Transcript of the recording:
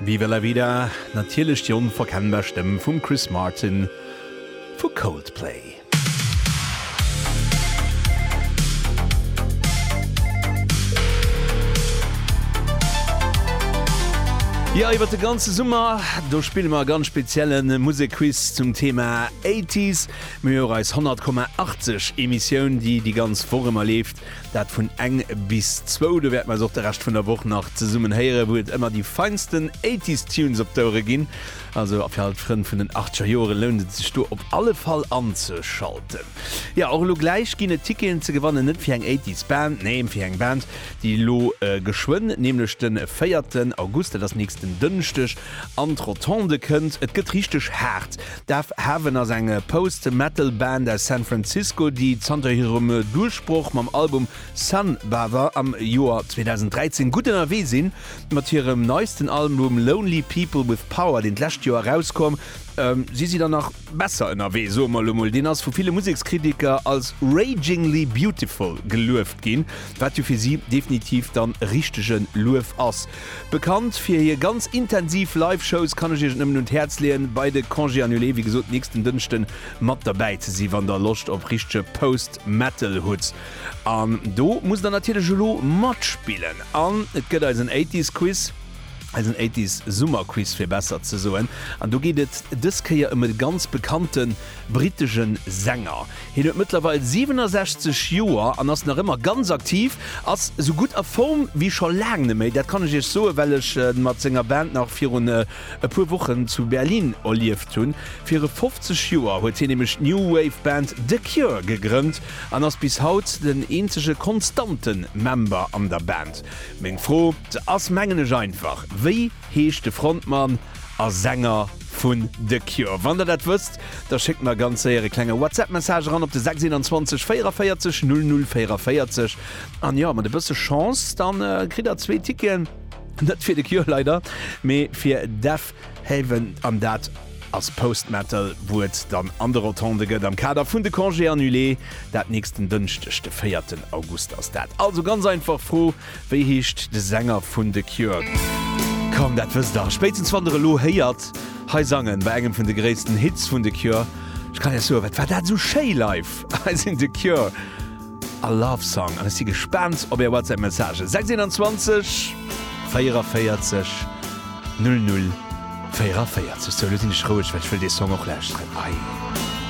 Viva la vida, natierlech déi onverkennbar Stëmm vum Chris Martin vu Coldplay. Jo, iwwert de ganze Summer do spille mer e ganz spezielle Musekquiz zum Thema Eighties. Mir hu jo eis 100,80 Emissioun, déi déi ganz Woch ëmmer leeft. Dat vun eng bis zwou. Do wäerte mer eis och de Rescht vun der Woch nach zesummen héieren, wou et ëmmer déi feinsten Eighties Tunes op d'Ouere ginn. Also fir all d'Frënn vun den Achteger Joere lount et sech do op alle Fall anzeschalten. Jo, och elo gläich ginn et Ticketen ze gewannen, net fir eng Eighties Band, nee, fir eng Band, déi elo geschwënn, nämlech de véierten August, dat ass nächsten Dënschdeg, an d'Rotonde kënnt. Et gëtt richteg haart. Death Heaven ass eng Post-Metal-Band aus San Francisco, déi zanter hirem Duerchbroch mam Album Sunbather am Joer 2013 gutt ënnerwee sinn. Mat hirem neisten Album Lonely People with Power, deen d'lescht Joer erauskomm, si si dann nach besser ënnerwee, soe mer elo mol. Deen ass vu ville Musekskritiker als ragingly beautiful gelueft ginn, wat jo fir si definitiv dann richtege Luef ass. Bekannt fir hir ganz intensiv Live-Shows, kann ech iech et nëmmen un d'Häerz leeën, bei de Congés Annulés, wéi gesot, nächsten Dënschden mat derbäi ze sinn, wann der Loscht op richtege Post-Metal hutt. An do musst der natierlech elo matspillen. An et gëtt eisen Eighties-Quiz, eisen Eighties-Summer-Quiz, fir besser ze soen. An do geet et dës Kéier ëm e ganz bekannte brittesche Sänger. Hien huet mëttlerweil 67 Joer an ass nach ëmmer ganz aktiv. Ass sou gutt a Form wéi scho laang neméi. Dat kann ech iech soen, well ech e mat senger Band nach virun e puer Wochen zu Berlin erlieft hunn. Viru 50 Joer huet hien nämlech d'New Wave Band The Cure gegrënnt an ass bis haut den eenzege konstante Member an der Band. Meng Fro ass mengen ech einfach, wéi heescht de Frontmann? a Sänger vun The Cure. Wann der dat wësst, da schéckt mer ganz séier e klenge WhatsApp-Message eran op de 621 44 00 44 an jo, mat e bësse Chance, da kritt der zwee Ticketen, net fir The Cure leider, mee fir Deafheaven an dat ass Post-Metal, wou et dann an de Rotondë gëtt am Kader vun de Congés Annulés. Dat nächsten Dënschdeg, de véierten August ass dat. Also ganz einfach Fro. Wéi heescht de Sänger vun The Cure? Komm, dat wësst der spéitstens wann der elo héiert hei sangen, bei engem vun de gréissten Hits vun The Cure. Ech kann Iech soen, wat war dat esou schéi live! Hei sinn The Cure a Love Song an ech si gespaant op är WhatsApp Messagen. 6 21 44 00 44. Sou, elo sinn ech roueg, well ech wëll dee Song och lauschteren. Ei!